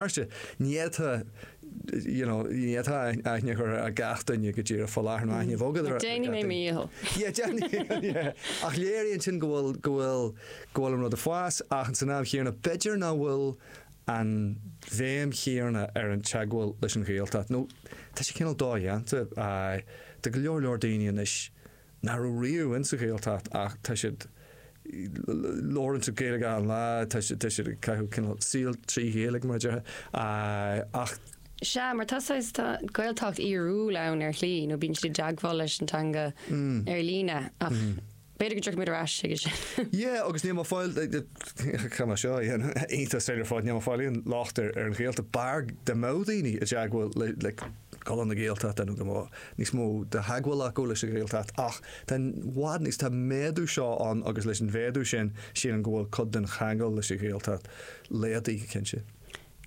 Ní fhéadfá aithne a chur ar gach duine go díreach faoi láthair, nó aithne a bheith agat ar gach duine. Déanfaidh mé mo dhícheall. Ach léiríonn sin go bhfuil an rud ag fás ach san am chéanna b'fhéidir nach bhfuil an bhéim chéanna ar an teagmháil leis an Ghaeltacht nó tá sé cineál dodhéanta do go leor leor daoine anois. nach raibh riamh insa Ghaeltacht ach tá siad labhrann siad Gaeilge achan lá tá siad tá siad ag caitheamh cineál saol trí Ghaeilge mar a déarfá ach Sea, mar tá saghas, tá Gaeltacht fhíorúil ann ar shlí nó bíonn siad i dteagmháil leis an teanga ar líne ach b'fhéidir go dtiocfaidh muid ar ais chuige sin. Yeah agus níl mé ag fáil caithfidh mé seo a dhéanamh iontas ar fad níl mé ag fáil aon locht ar an Ghaeltacht b'fhearr dá mbeadh daoine i dteagmháil le cultúr na Gaeltachta nó go mbeadh níos mó de theagmháil acu leis an Ghaeltacht ach tá i bhfad níos tá an méadú seo ann agus leis an mhéadú sin sílim go bhfuil cuid den cheangal leis an Ghaeltacht laghdaithe go cinnte.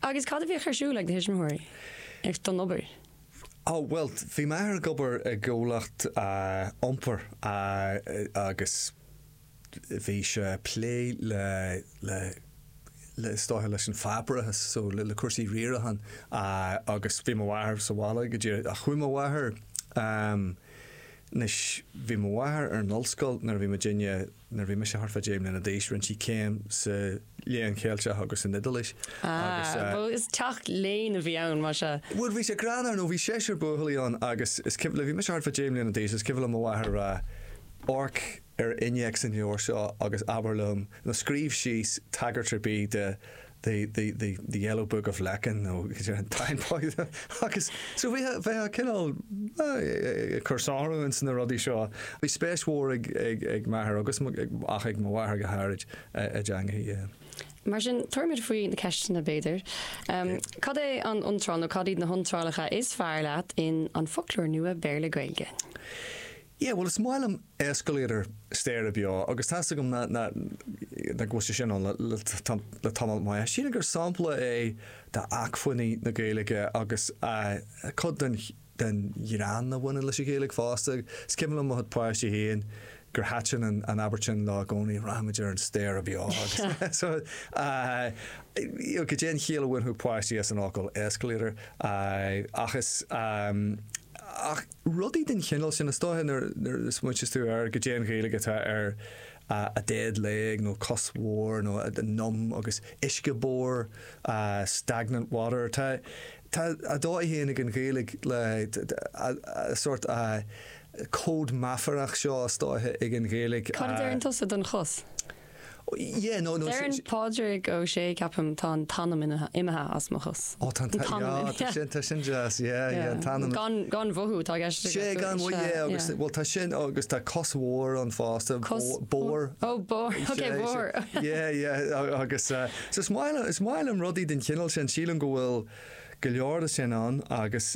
Agus cad a bhíodh ar siúl ag do thuismitheoirí ag don obair? Ó bhuel bhí m'athair ag obair i gcomhlacht iompair agus. bhí sé ag plé le, le, le, is dócha leis an pháipéarachas, so, le, le cúrsaí riaracháin agus bhí mo mháthair sa bhaile go díreach ach chuaigh mo mháthair, ehm, anois bhí mo mháthair ar an ollscoil nuair a bhí muidinne, nuair a bhí mise thart fá deich mbliana d'aois, rinne sí céim sa Léann Ceilteach agus san Iodáilis agus eh. Ah, bhuel is teach léinn a bhí ann, más ea. Bhuel bhí sé greannmhar nó bhí seisear buachaillí ann agus is cuimhin, nuair a bhí mise thart fá deich mbliana d'aois is cuimhin liom mo mháthair a rá, amharc, ar innéacs an leabhair seo agus abair liom, nó scríobh síos tagairt ar bith do the, the, the, the Yellow Book of Lecan nó an Táin Bó agus so bheadh, bheadh cineál ag cur sárú ins na rudaí seo. Bhí spéis mhór ag, ag, ag m'athair agus mo, ach ag mo mháthair go háirid i dteangacha. Mar sin, tabharfaimid faoi na ceisteanna b'fhéidir. Cad é an iontráil nó cad iad na hiontrálacha is fearr leat in An Foclóir Nua Béarla-Gaeilge? Yeah, bhuel is maith liom escalator staighre beo agus tá 'fhios agam nach bhfuil sé sin ann le tamall maith. Sílim gur sampla é d'acmhainní na Gaeilge agus cuid den ghreann a bhaineann leis an Ghaeilge fosta. Is cuimhin liom mo chuid páistí féin gur thaitin an abairt sin leo i gcónaí, rachaidh muid ar an staighre beo agus so you know cad é an chiall a bhainfeadh páistí as an fhocal escalator ach is. Rudaí den chineál sin, is dóiche nuair a smaointeas tú ar cad é an Ghaeilge atá ar a dead leg nó cos bhodhar nó a numb agus uisce bodhar, stagnant water, tá tá a dóigh féin ag an Ghaeilge le a sórt cód meafarach seo is dóiche ag an Ghaeilge. Cad a deireann tusa don chos? Deireann Pádraig Ó Sé, ceapaim, Tá an t-anam imithe as mo chos. Ó tá an t-anam imithe. Tá an t-anam imithe. Tá sin deas, yeah, yeah, an t-anam. Gan mhothú atá i gceist aige. Sea, gan mhothú, yeah, agus, bhuel, tá sin agus tá cos bhodhar ann fosta. Cos mhór? Bodhar. Ó, bodhar, okay, bodhar. Yeah, yeah, agus, so is maith liom, is maith liom rudaí den chineál sin, sílim go bhfuil go leor de sin ann agus,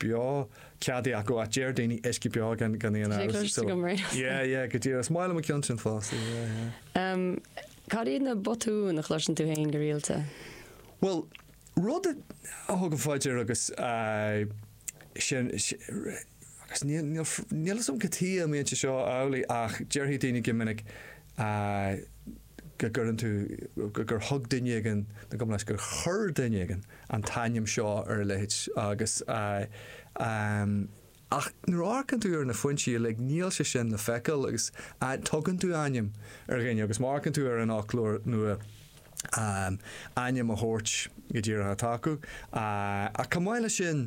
beo, ceadaí acu áit deir daoine uisce beo gan gan aon amhras. Is é cloistear go mbraitheas tú. Yeah yeah go díreach. Is maith liom an ceann sin fosta yeah yeah. Umm cad iad na botúin a chloiseann tú fhéin go rialta? Bhuel rud a thugaim faoi dear agus eh sin agus níl níl níl 'fhios a'm cad tuige a mbíonn sé seo amhlaidh ach déarfaidh daoine go minic eh go gcuireann tú go gur thug duine éigin nó gabh mo leithscéal gur chuir duine éigin an t-ainm seo ar a leithéid agus ach nuair a amharcann tú ar na foinsí uilig níl sé sin le feiceáil agus tugann tú ainm ar dhuine agus má amharcann tú ar an fhoclóir nua ainm a thabhairt go díreach atá acu ach chomh maith leis sin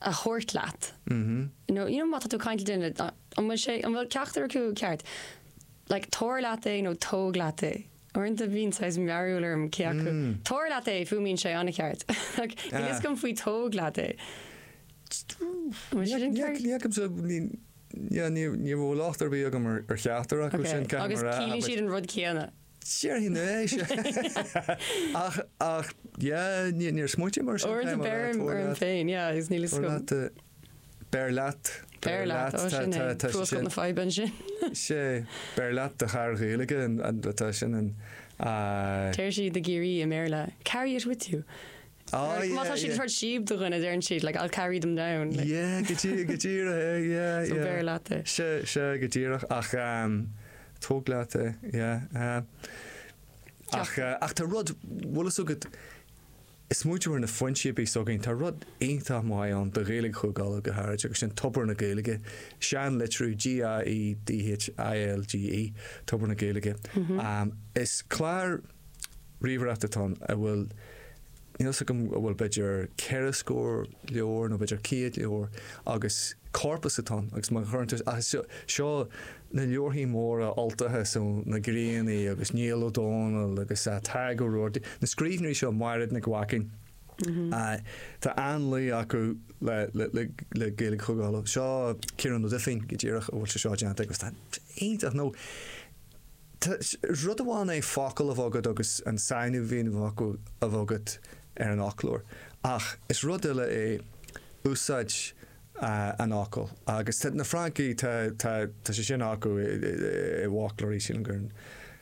a thabhairt leat nó you know má tá tú ag caint le duine an bhfuil sé, an bhfuil ceachtar acu ceart? Like tabhair leat é nó tóg leat é. Uaireanta bíonn saghas mearbhall orm cé acu. Tabhair leat é, fuaimíonn sé an-cheart. Like níl a fhios agam faoi tóg leat é. Bhfuil sé sin ceart? Ní fheicimse, ní, yeah ní, ní raibh locht ar bith agam ar cheachtar acu sin, caithfidh mé a rá. Agus ciallaíonn siad an rud céanna. Déarfainn é sea ach ach yeah níor smaoitigh mé air sin féin. B'fhearr liom orm féin yeah agus níl fhios agam. Beir leat. Beir leat ó sin é. Fuascailt na faidhbe ansin. Sea, beir leat do charr Ghaeilge atá sin an. Deir siad i gCiarraí i mBéarla carry it with you. Ah yeah yeah. Má tá siad ag tabhairt síob do dhuine deireann siad like I'll carry them down like. Yeah go díreach go díreach é yeah yeah. So beir leat é. Sea sea go díreach ach tóg leat é yeah. Ach ach tá rud bhfuil fhios agat is muid ar na foinsí a bhí fhios againn tá rud iontach maith ann do Ghaeilge Chúige Uladh go háirid agus sin Tobar na Gaeilge. Seanlitriú GAEDHILGE Tobar na Gaeilge. Is clár. ríomhaireachta atá ann a bhfuil, níl 'fhios agam an bhfuil b'fhéidir ceithre scór leabhar nó b'fhéidir céad leabhar agus corpus atá ann agus má chuireann tú, seo na leabharthaí móra Ultacha, so na Griannaigh agus Niall Ó Dónaill agus Tadhg Ó Rabhartaigh, na scríbhneoirí seo, Maighréad Nic Mhaicín, tá an-luí acu le Gaeilge Chúige Uladh, seo Ciarán Ó Duibhín go díreach a bhfuil sé seo déanta aige agus tá, iontach, nó. Tá rud amháin é focal a bheith agat agus an sainiú a bhíonn i bhfocal a bheith agat ar an fhoclóir ach is rud eile é úsáid an fhocail agus tá na Francaigh, tá, tá, tá sé sin acu i bhfoclóirí, sílim gur,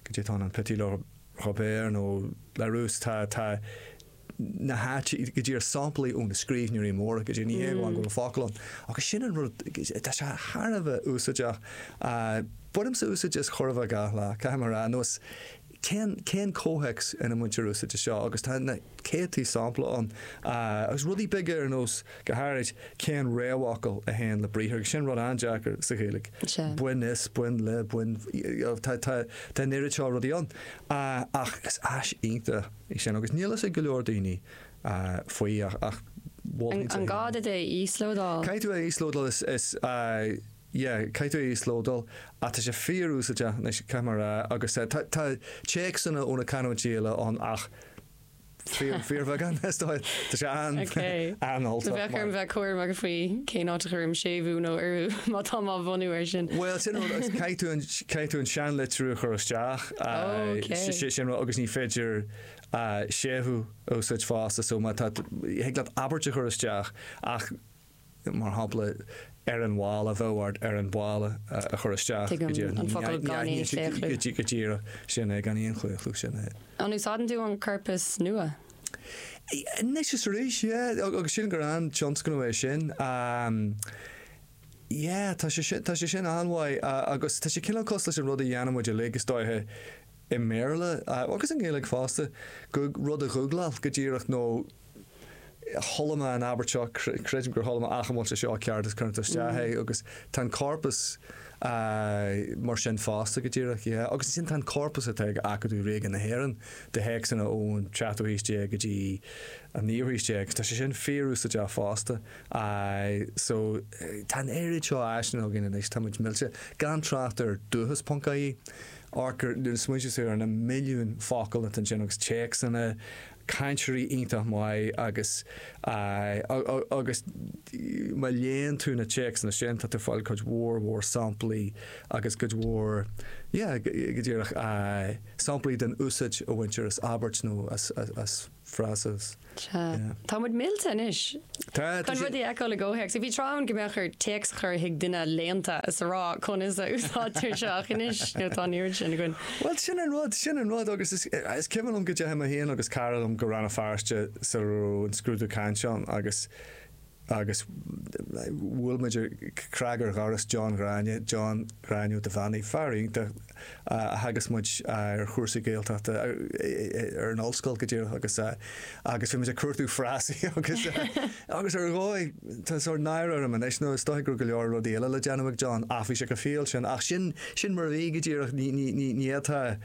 go dté tá an Petit Robert nó Larousse, tá, tá. na háite go díreach samplaí ó na scríbhneoirí móra go díreach ní hé amháin go bhfuil an focal ann agus sin an rud tá sé thar a bheith úsáideach bainimse úsáid as chóir a bheith gach lá caithfidh mé a rá anois cén cén comhthéacs ina mbaintear úsáid as seo agus tá na céadtaí sampla ann agus rudaí beaga ar nós go háirid cén réamhfhocal a théann le briathar agus sin rud an-deacair sa Ghaeilge bain as bain le bain tá an oiread seo rudaí ann ach is áis iontach í sin agus níl fhios ag go leor daoine faoi ach mholfainn An gá duit é a íoslódáil? Caithfidh tú é a íoslódáil is yeah caithfidh tú é a íoslódáil ach tá sé fíor úsáideach anois caithfidh mé a rá agus tá téacsanna ó na canúintí eile ann ach fíor fíor bheagán is dóigh. Tá sé an an-Ultach. Bheadh orm bheith cúramach faoi cén áit a chuirim séimhiú nó urú má tá mé á bhunú air sin. Bhuel sin caithfidh tú caithfidh tú an seanlitriú a chur isteach. agus ní féidir séimhiú a úsáid fosta so má tá thig leat abairt a chur isteach ach mar shampla ar an mhála bheadh ort ar an mála a chur isteach go díreach an focal gan aon chlaochlú. go díreach sin é gan aon chlaochlú sin é. An úsáideann tú an corpas nua? anois is arís yeah agus sílim gur an-tionscnamh é sin. Yeah, tá sé sin, tá sé sin an-mhaith. Agus tá sé cineál cosúil leis an rud a dhéanann muid uilig, is dóiche, i mBéarla, agus i nGaeilge fosta, Gug, rud a ghugláil, go díreach, nó chuala mé an abairt seo, creidim gur chuala mé, ach an bhfuil sé seo ceart, is cuireann tú isteach é, agus tá an corpus mar sin fosta, go díreach, yeah. Agus ansin tá an corpus atá ag Acadamh Ríoga na hÉireann de théacsanna ón tseachtú haois déag go dtí an naoú haois déag, tá sé sin fíorúsáideach fosta. Aye, so, tá an oiread seo áiseanna againn anois, tá muid millte, gan trácht ar Dúchas ponc ie, amharc ar, nuair a smaointíos ar na milliúin focal atá ansin agus téacsanna, cainteoirí iontach maith agus, aye, agus má léann tú na téacsanna sin, tá tú ag fáil cuid mhór mhór samplaí agus cuid mhór, yeah, go díreach, aye, samplaí den úsáid a bhaintear as abairt nó as, as, as frása. Tá muid millte anois. Tá. Chun rudaí a fheiceáil i gcomhthéacs. Bhí tráth ann go mbeadh ort téacs a chur chuig duine léannta is a rá, conas a úsáidtear seo? Ach anois, you know, tá an oiread sin againn. Bhuel, sin an rud, sin an rud agus is, is cuimhin liom go ndeachaigh mé féin agus cara liom go Rann na Feirste sula raibh an scrúdú cainte ann agus Agus bhuail muid cnag ar dhoras John Ghráinne, John Ghráinne Ó Duibheannaigh, fear iontach a theagasc muid ar chúrsaí Gaeltachta ar an ollscoil go díreach agus agus bhí muid ag cuartú frásaí agus agus ar dhóigh tá sórt náire orm anois nó is dóigh go raibh go leor rudaí eile le déanamh ag John ach bhí sé go fial sin, ach sin, sin mar a bhí go díreach ní fhéadfá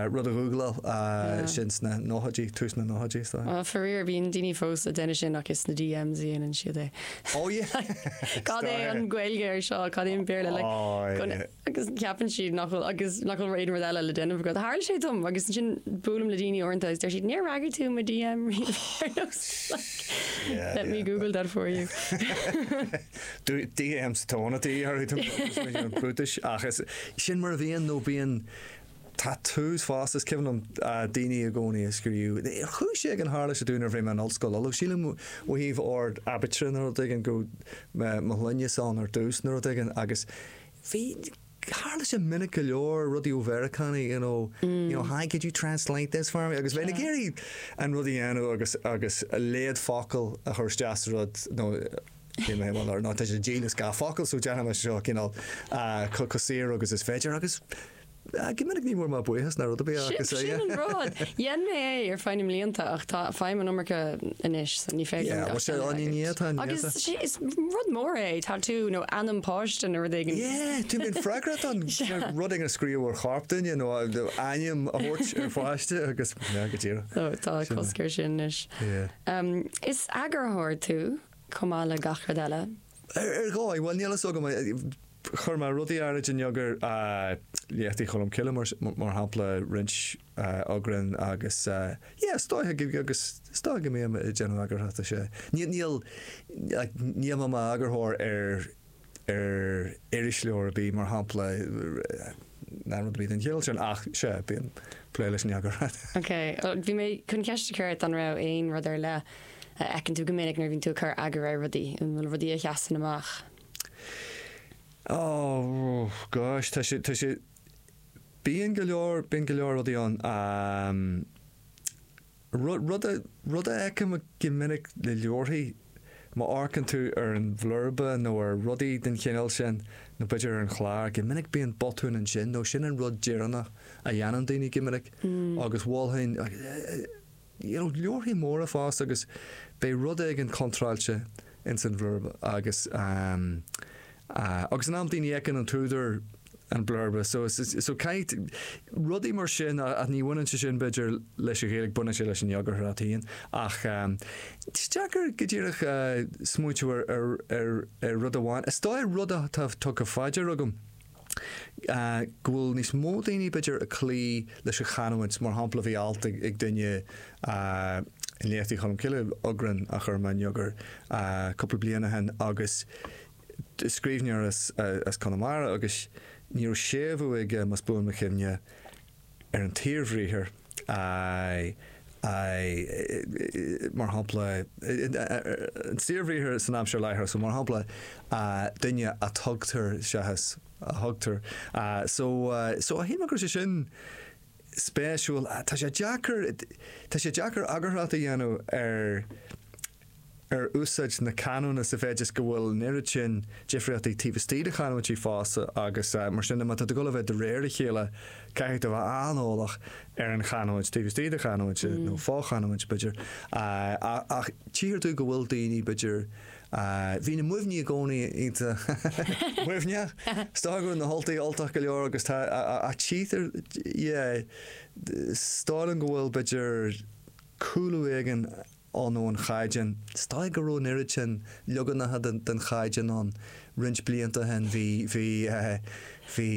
rud a ghúgláil sin sna nóchaidí, tús na nóchaidí is dóigh. Á, faraor, bíonn daoine fós ag déanamh sin ach is sna DMs a dhéanann siad é. Ó yeah! Like, cad é an Ghaeilge air seo, cad é an Béarla, like, agus ceapann siad nach bhfuil, agus nach bhfuil aon rud eile le déanamh agat. Tharla sé dom agus ansin buailim le daoine uaireanta agus deir siad, níor fhreagair tú mo DM riamh ar nós, like, let me google that for you. DMs tóna tae orthu, tá muid ag iarraidh brúitis, ach is, sin mar a bhíonn nó bíonn. Tá a fhios, fosta, is cuimhin liom daoine i gcónaí ag scríobh, chuig, is é, ag an tharla sé dúinn nuair a bhí mé ar an ollscoil, although sílim ó thaobh ord aibítre nó rud éigin go mbíodh mo shloinne ann ar dtús nó rud éigin agus bhí, tharla sé minic go leor, rudaí ó Mheiriceánaigh you know, you know hi could you translate this for me agus bheinn ag iarraidh an rud a dhéanamh agus a mhéad focal a chur isteach sa rud nó Níl mé mall ar ná tá sé dílis do gach focal so déanfaidh mé seo cineál chomh saor agus is féidir agus go minic ní bhfuair mé buíochas ná rud ar bith ach is é. Sin an rud. Dhein mé é ar feadh na mblianta ach tá faighim an iomarca anois so ní féidir liom gach duine a aird. Agus sé is rud mór é tatú nó ainm páiste nó rud éigin. Yeah, tú a bheith freagrach as rud éigin a scríobh ar chorp duine nó ainm a thabhairt ar pháiste agus go dtí. Tá cosc ar sin anois. Is eagarthóir tú. chomh maith le gach rud eile. Ar dhóigh, bhuel, níl fhios agam. Chuir mé rudaí áirithe in eagar, léachtaí Cholm Cille mar shampla, roinnt eagrán agus yeah, is dóiche go, agus is dóiche go mbím ag déanamh eagarthachta, sea. Níl, níl, like, níl mé i m'eagarthóir ar. ar irisleabhar ar bith, mar shampla, ná rud ar bith den chineál sin ach, sea, bíonn plé leis an eagarthóireacht. Ok, bhí mé chun ceist a chur ort an raibh aon rud ar leith a fheiceann tú go minic nuair a bhíonn tú ag cur eagar ar rudaí, an bhfuil rudaí a sheasann amach? Oh, gosh, tá sé, tá sé, bíonn go leor, bíonn go leor rudaí ann a, Rud a, rud a fheicim go minic le leabharthaí, má amharcann tú ar an bhlurba nó ar rudaí den chineál sin, nó b'fhéidir ar an chlár, go minic bíonn botún ansin nó sin an rud deireanach a dhéanann daoine go minic agus mholfainn, you know, leabharthaí móra fosta agus beidh rud éigin contráilte. ins an bhlurba agus agus in amantaí ní fheiceann an t-údar an blurba so so caithfidh rudaí mar sin ach ní bhaineann sé sin b'fhéidir leis an Ghaeilge baineann sé leis an eagarthóireacht fhéin ach is deacair go díreach smaointiú ar ar ar rud amháin is dóigh rud atá tugtha fá dear agam go bhfuil níos mó daoine b'fhéidir ag cloí leis an chanúint, mar shampla bhí alt ag duine in Léachtaí Cholm Cille, eagrán a chuir mé in eagar, cúpla bliain ó shin agus scríbhneoir as Conamara agus ní raibh séimhiú aige, más buan mo chuimhne. ar an tsaorbhriathar I, I, mar shampla, an saorbhriathar san aimsir láithreach, so mar shampla, duine a tugtar, seachas a thugtar. So, so shíl mé go raibh sé sin spéisiúil. Tá sé deacair, tá sé deacair eagarthóireacht a dhéanamh ar, ar úsáid na canúna sa mhéid is go bhfuil an oiread sin difríochtaí taobh istigh de chanúintí fosta agus mar sin de má tá tú dul a bheith de réir a chéile caithfidh tú a bheith an-eolach ar an chanúint taobh istigh de chanúint nó fo-chanúint b'fhéidir ach tchíthear domh go bhfuil daoine b'fhéidir bhí na Muimhnigh i gcónaí iontach Muimhneach is dóiche go raibh na hUltaigh Ultach go leor agus tá ach tchítear yeah is dóigh liom go bhfuil b'fhéidir cúlú éigin ann ón chaighdeán. Is dóigh go raibh an oiread sin leaganacha den chaighdeán ann roinnt blianta ó shin. Bhí, bhí, bhí,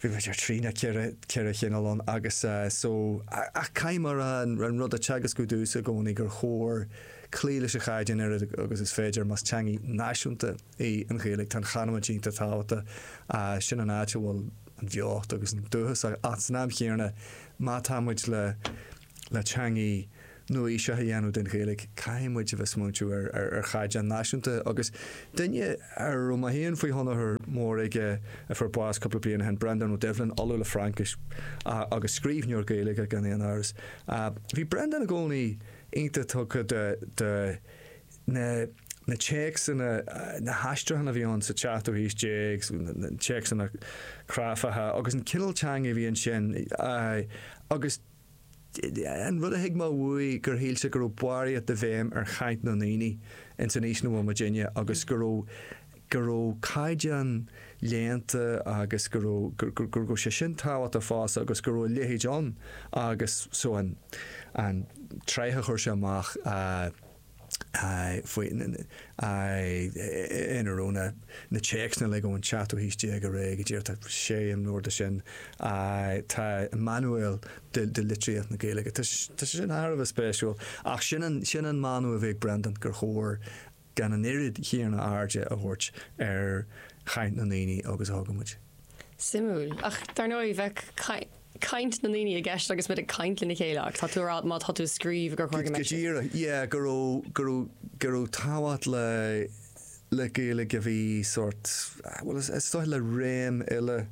b'fhéidir trí nó ceithre, ceithre chineál ann agus so, ach caithfidh mé a rá an rud a teagascadh domhsa i gcónaí gur chóir cloí leis an chaighdeán a oiread agus is féidir más teanga náisiúnta í an Ghaeilge. Tá an chanúint iontach tábhachtach. Sin an áit a bhfuil an bheocht agus an dúchas ach san am chéanna má tá muid le le teanga nua-aoiseach a dhéanamh den Ghaeilge, caithfidh muid a bheith smaointiú ar chaighdeán náisiúnta agus duine a raibh mé fhéin faoi thionchar mór aige a fuair bás cúpla bliain ó shin, Breandán Ó Doibhlin, Ollamh le Fraincis agus scríbhneoir Gaeilge gan aon amhras. Bhí Breandán i gcónaí iontach tugtha do na téacsanna, na haistriúcháin a bhí ann sa tseachtú haois déag, na téacsanna cráifeacha agus an cineál teanga a bhí ansin agus. An rud a thuig mé uaidh gur shíl sé go raibh barraíocht de bhéim ar chaint na ndaoine ins an aois 'na bhfuil muidinne agus go raibh go raibh caighdeán léannta agus go raibh go raibh sé sin tábhachtach fosta agus go raibh a leithéid ann agus so an an tsraith a chuir sé amach a ina raibh na téacsanna uilig ón tseachtú aois déag ar aghaidh, go díreach, tá sé imleabhar de sin. Tá Manuail de Litríocht na Gaeilge, tá sé sin thar a bheith spéisiúil. Ach sin an mana a bhí ag Brendan, gur chóir gan an oiread chéanna airde a thabhairt ar chaint na ndaoine agus a thugann muid. Suimiúil. Ach dar ndóigh, bheadh caint. caint na ndaoine i gceist agus muid ag caint lena chéile agus tá tú ag rá má tá tú ag scríobh gur chóir go mbeidh sé. Go díreach, yeah, go raibh, go raibh, go raibh tábhacht le, le Gaeilge a bhí sórt, bhuel is, is dóigh le réim eile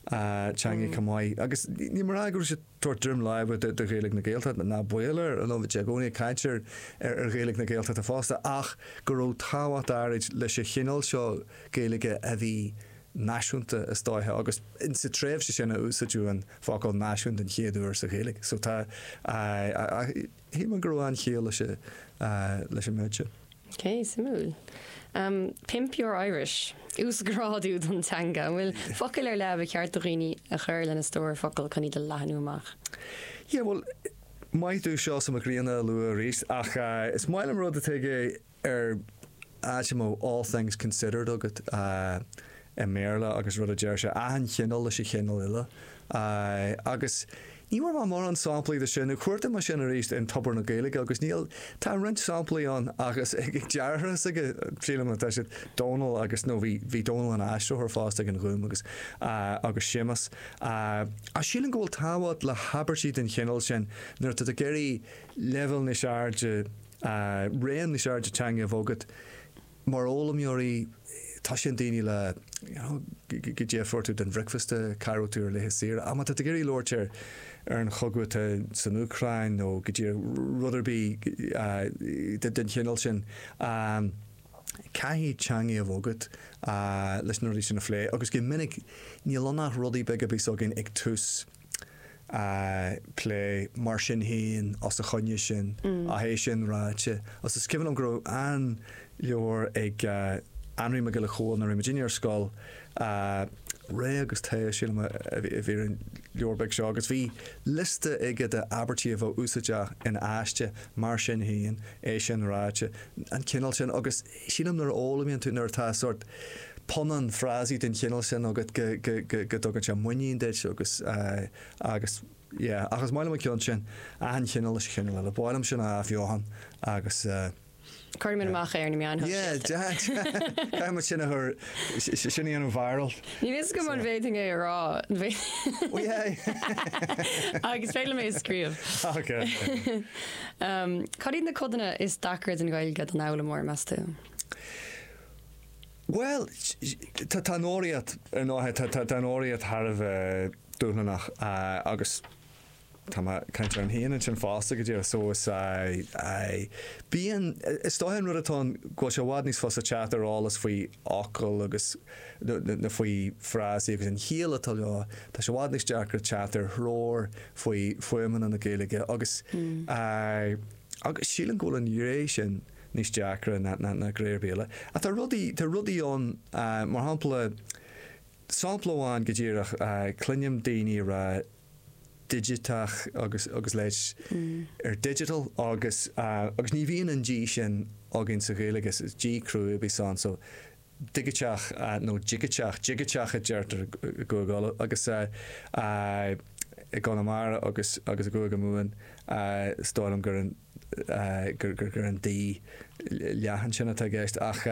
teanga chomh maith agus ní mar a rá go raibh sé ag tabhairt droim láimhe do, do Ghaeilge na Gaeltachta, ná baol air, you know, bhí sé i gcónaí ag caint ar, ar, ar Ghaeilge na Gaeltachta fosta ach go raibh tábhacht áirid leis an chineál seo Gaeilge a bhí náisiúnta is dóiche agus sa tréimhse sin a úsáideadh an focal náisiún den chéad uair sa Ghaeilge so, shíl mé go raibh an-chiall leis an méid sin. Ok, suimiúil. Pimp your Irish. Uasghrádú don teanga. An bhfuil focail ar leith ar cheart do dhaoine a chur lena stór focal chun é a leathnú amach? Yeah bhuel maith thú Seosamh Mac Grianna a lua arís ach is maith liom rud atá aige ar, ah, mar All Things Considered agat i mBéarla agus rud a deir sé, achan chineál leis an chineál eile. Agus ní bhfuair mé mórán samplaí de sin, nó chuartaigh mé sin arís in Tobar na Gaeilge agus tá roinnt samplaí ann agus ag deartháir s'aige, sílim, atá siad, Dónall agus, nó bhí, bhí Dónall ina aistritheoir fosta ag an Ghúm agus, agus Séamus. Ach sílim go bhfuil tábhacht le abairtí den chineál sin nuair atá tú ag iarraidh leibhéal níos airde, raon níos airde teanga a bheith agat mar fhoghlaimeoir? Tá sé i ndaoine, you know, goidé a fuair tú don bhricfeasta, cá háit a raibh tú ar laetha saoire ach má tá tú ag iarraidh labhairt ar ar an chogadh atá san Úcráin nó goidé, rud ar bith den chineál sin caithfidh teanga a bheith agat leis na rudaí sin a phlé agus go minic níl ann ach rudaí beaga a bíonns againn ag tús a phlé. Mar sin féin, os a choinne sin, ach é sin ráite, agus is cuimhin liom go raibh an-leabhar ag Anraí Mac Giolla Chomhaill nuair a bhí muid uilig ar scoil, Ré agus Tae, sílim a bhí ar an leabhar beag seo, agus bhí liosta aige d'abairtí a bheadh úsáideach in aiste. Mar sin féin, é sin ráite, an cineál sin, agus. Sílim nuair a fhoghlaimíonn tú, nuair atá sórt punann frásaí den chineál sin agat go, go, go, go dtugann sé muinín duit agus, agus, yeah. Ach is maith liom an ceann sin, achan chineál leis an chineál eile. Ba mhaith liom sin a athbheochan agus eh. Cuirfidh muid amach é ar na meáin shóisialta. Yeah, yeah, yeah. Caithfidh muid sin a chur, sin a dhéanamh viral. Ní bhíos go mban bhéting é a rá. Agus féile mé scríobh. Okay. Cad iad na codanna is deacra den Ghaeilge don fhoghlaimeoir, meas tú? Bhuel, tá an fhoghraíocht ar ndóighe, tá an fhoghraíocht thar a bheith dúshlannach agus tá mé ag caint orm féin ansin fosta go díreach so is bíonn, is dóiche an rud atá ann go bhfuil sé i bhfad níos fusa teacht ar eolas faoi fhocail agus, nó faoi fhrásaí agus an chiall atá leo. Tá sé i bhfad níos deacra teacht ar threoir faoi fuaimeanna na Gaeilge agus agus sílim go bhfuil an ghné sin níos deacra ná ná ná gné ar bith eile. Ach tá rudaí, tá rudaí ann mar shampla, sampla amháin go díreach, cluinim daoine a rá, digiteach agus leid ar digital agus ní bhíonn an D sin againn sa Ghaeilge, is D cruaidh a bhíos ann, so digiteach nó digiteach, digiteach a deirtear i gCúige Uladh agus i gConamara agus i gCúige Mumhan is dóigh liom gur gur an D leathan sin atá i gceist ach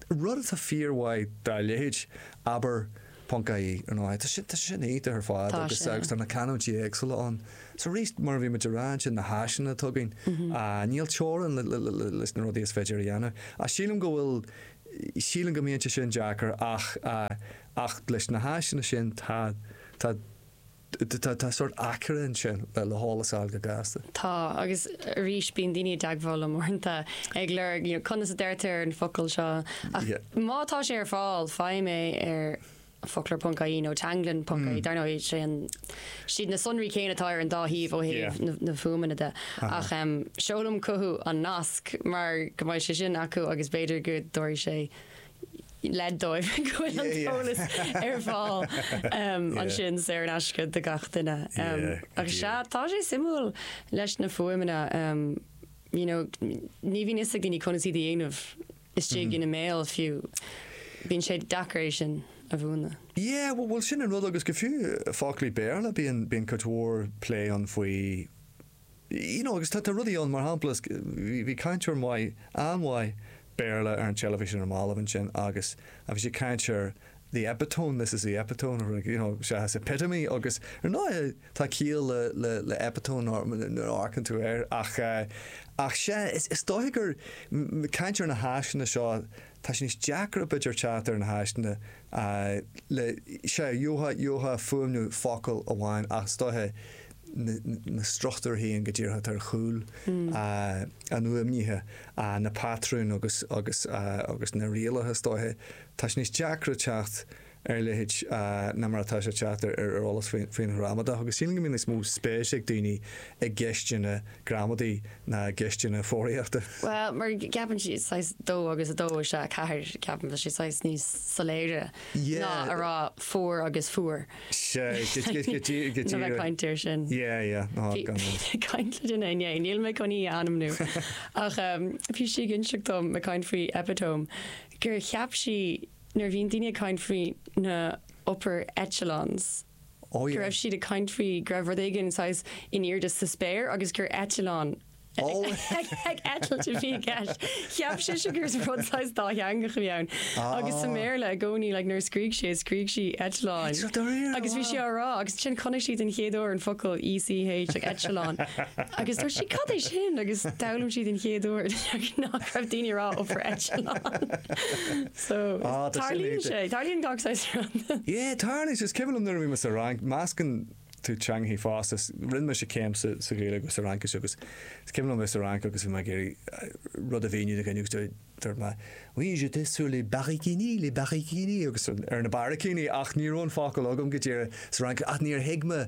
rud atá fíormhaith dá leithéid, abair ponc ie you know tá sé sin iontach ar fad agus tá na canúintí éagsúla ann. So arís mar a bhí muid a rá ansin na háiseanna atá againn, níl teorainn leis na rudaí is féidir a dhéanamh. Ach sílim go bhfuil, sílim go mbíonn sé sin deacair ach leis na háiseanna sin tá, tá, Tá sórt aicearra ansin le heolas a fháil go gasta. Tá, agus arís bíonn daoine i dteagmháil liom uaireanta ag lorg you know conas a deirtear an focal seo ach má tá sé ar fáil faighim é ar focloir.ie nó teanglann.ie dar ndóigh sé an siad na sonraí céanna atá ar an dá shuíomh ó thaobh na na fuaimeanna de ach seolaim chucu an nasc mar go mbeidh sé sin acu agus b'fhéidir go dtabharfaidh sé leid dóibh go bhfuil an t-eolas ar fáil ansin saor in aisce do gach duine. Agus sea, tá sé suimiúil leis na fuaimeanna, you know, ní bhíonn 'fhios ag daoine conas iad a dhéanamh istigh ina mbéal fiú. Bíonn sé deacair é sin a mhúineadh. Yeah, bhuel sin an rud agus go fiú foclaí Béarla, bíonn cuid mhór plé ann faoi You know, agus tá rudaí ann, mar shampla, bhí cainteoir maith, an-mhaith Béarla ar an teilifís ar na mallaibh ansin agus bhí sé ag caint ar the epitome, this is the epitome, nó rud, you know, seachas epitome agus ar ndóighe tá ciall le epitome nuair a amharcann tú air ach sea, is dóiche gur ag caint ar na háiseanna seo, Tá sé níos deacra b'fhéidir teacht ar na háiseanna le sea, gheofá fuaimniú focail amháin ach is dóiche na struchtúir féin go díreach atá ar chúl an fhuaimnithe, na patrúin agus na rialacha is dóiche. Tá sé níos deacra teacht. ar leithéid ná mar atá sé teacht ar eolas faoin ghramadach agus sílim go mbíonn níos mó spéise ag daoine i gceisteanna gramadaí ná i gceisteanna foghraíochta. Bhuel, mar ceapann siad saghas dó agus a dó is ea a ceathair, ceapaim, tá sé saghas níos soiléire ná a rá four agus fuar. Sea, go díreach. Níl mé ag caint air sin. Yeah, yeah, ná haigh, gan dabht. Bhí mé ag caint le duine inné, níl mé chun í a ainmniú, ach bhí sí ag inseacht dom, ag caint faoi epitome, gur cheap sí, nuair a bhíonn daoine ag caint faoi na upper echelons go raibh siad ag caint faoi go raibh rud éigin saghas in airde sa spéir agus gur eitleán ag eitilt a bhí i gceist. Cheap sise gur rud saghas dátheangach a bhí ann. Agus sa mBéarla i gcónaí like, nuair a scríobh sí scríobh sí eitleán. Agus bhí sé á rá agus ansin chonaic sí don chéad uair an focal ECH echelon. Agus dúirt sí cad é sin agus d'fhoghlaim sí don chéad uair. Deirtear nach raibh daoine ag rá upper eitleán. So, Ah, tá sin tarlaíonn sé. Tarlaíonn gach saghas rud. Yeah, tarlaíonn sé. Is cuimhin liom nuair a bhí mé sa Fhrainc, meascann tú teangacha fosta. S- Rinne mise céim sa sa Ghaeilge agus sa Fhraincis agus is cuimhin liom bheith sa Fhrainc agus bhí mé ag iarraidh rud a mhíniú do dhuine agus do- dúirt mé Oui, j'étais sur les barraicíní, les barraicíní, agus ar na barraicíní ach ní raibh an focal agam go díreach sa Fhraincis ach níor thuig mé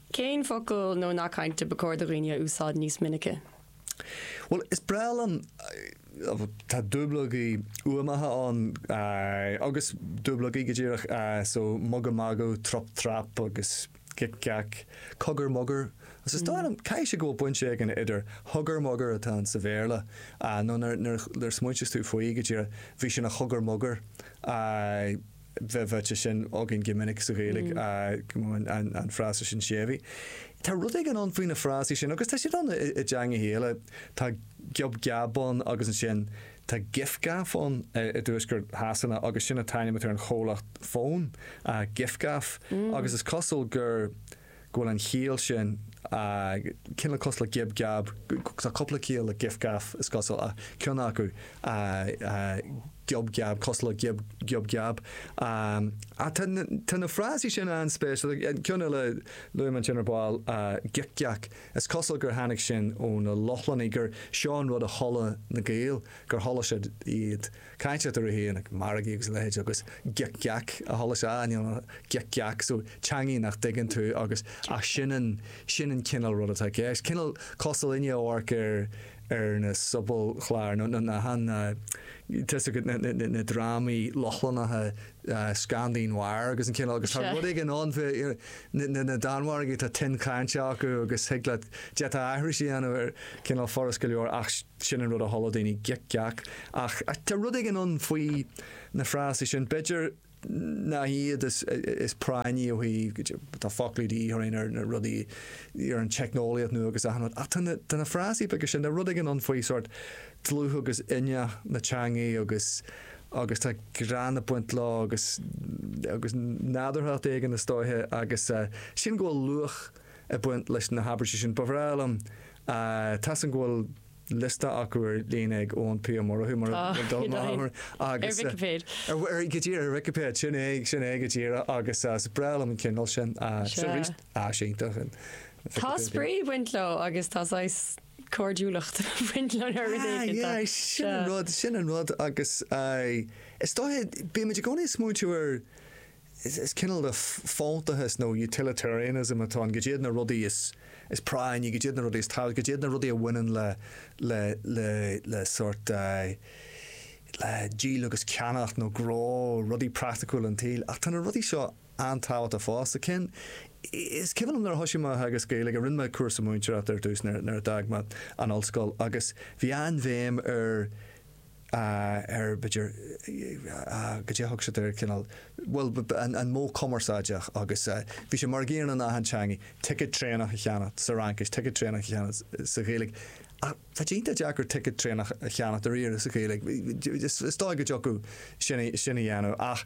Cén focal nó nath cainte ba chóir do dhaoine a úsáid níos minice? Bhuel, is breá liom, tá dúblógaí uamacha ann agus dúblógaí go díreach, so mugadh magadh, trup trap agus gic geac, cogar mogar. Sea, is dóigh liom, caithfidh sé go bhfuil baint éigin idir hugger mugger atá ann sa Bhéarla nó nuair a smaointíos tú faoi go díreach, bhí sé ina chogar mogar. bheith faighte sin againn go minic sa Ghaeilge, an frása sin séimhithe. Tá rud éigin ann faoi na frásaí sin agus tá siad ann i dteangacha eile. Tá giob geab ann agus ansin tá gif gaff ann i dtuaisceart Shasana agus sin an t-ainm atá ar an chomhlacht fón, gif gaff, agus is cosúil gur. go bhfuil an chiall sin cineál cosúil le giob geab, tá cúpla ciall le gif gaf is cosúil ach ceann acu giob geab, cosúil le giob giob geab. Ach tá na frásaí sin an-spéisiúil, an ceann eile a luaigh mé ansin ar ball gic geac, is cosúil gur tháinig sin ó na Lochlannaigh, gur seo an rud a chuala na Gaeil, gur chuala siad iad. Caint eatarthu ag margaí agus a leithéid agus gic geac a chuala siad, you know, an gic geac so teangaidh nach dtuigeann tú agus ach sin an sin an cineál rud atá i gceist. Cineál cosúil inniu amharc ar ar na sobalchláir nó nó na han na tá a fhios agat na na na drámaí Lochlannacha Scandi Noir agus an cineál agus tá rud éigin ann fé na na na Danmhargaigh tá tuin chainte acu agus thig leat d'fhéadfá aithris a dhéanamh air cineál furast go leor ach Sin an rud a chuala daoine gic geac. Ach tá rud éigin ann faoi na frásaí sin, b'fhéidir nach iad is práinní ó thaobh, cad é, tá foclaí de dhíth orainn ar na rudaí, ar an teicneolaíocht nua agus achan rud. Ach tá na, tá na frásaí beaga sin, tá rud éigin ann faoi sórt dlúth agus inneach na teangaí agus, agus tá greann ag baint leo agus, agus nádúrthacht éigin is dóiche agus sin go bhfuil luach, ag baint leis na habairtí sin. Ba bhreá liom tá a fhios agam go bhfuil liosta acu ar líne ag Eoin P. Ó Murchú mar a dúirt mé cheana. Ar Vicipéid. Go díreach, ar Vicipéid. Sin é, sin é go díreach agus is breá liom an cineál sin. Sin arís áis iontach an Vicipéid. Tá spraoi ag baint leo agus tá saghas cairdiúlacht ag baint leo nó rud éigin. Sea, sin an rud, sin an rud agus is dóiche, bímid i gcónaí ag smaointiú ar, Is cineál de fóntachas nó utilitarianism atá ann. Cad iad na rudaí is práinní, cad iad na rudaí is tábhachtaí, cad iad na rudaí a bhaineann le sórt díol agus ceannacht nó gnó, rudaí praiticiúla an tsaoil. Ach tá na rudaí seo an-tábhachtach fosta. Is cuimhin liom nuair a thosaigh mé a theagasc Gaeilge, rinne mé cúrsa múinteoireachta ar dtús nuair a d'fhág mé an ollscoil agus bhí an-bhéim ar, ar b'fhéidir cad é a thug siad air cineál bhuel an modh cumarsáideach agus bhí sé mar an gcéanna in achan teanga ticket traenach a cheannacht sa Fhraincis ticket traenach a cheannacht sa Ghaeilge ach tá sé iontach deacair ticket traenach a cheannacht dáiríre sa Ghaeilge is dóigh go dtiocfadh sin a dhéanamh ach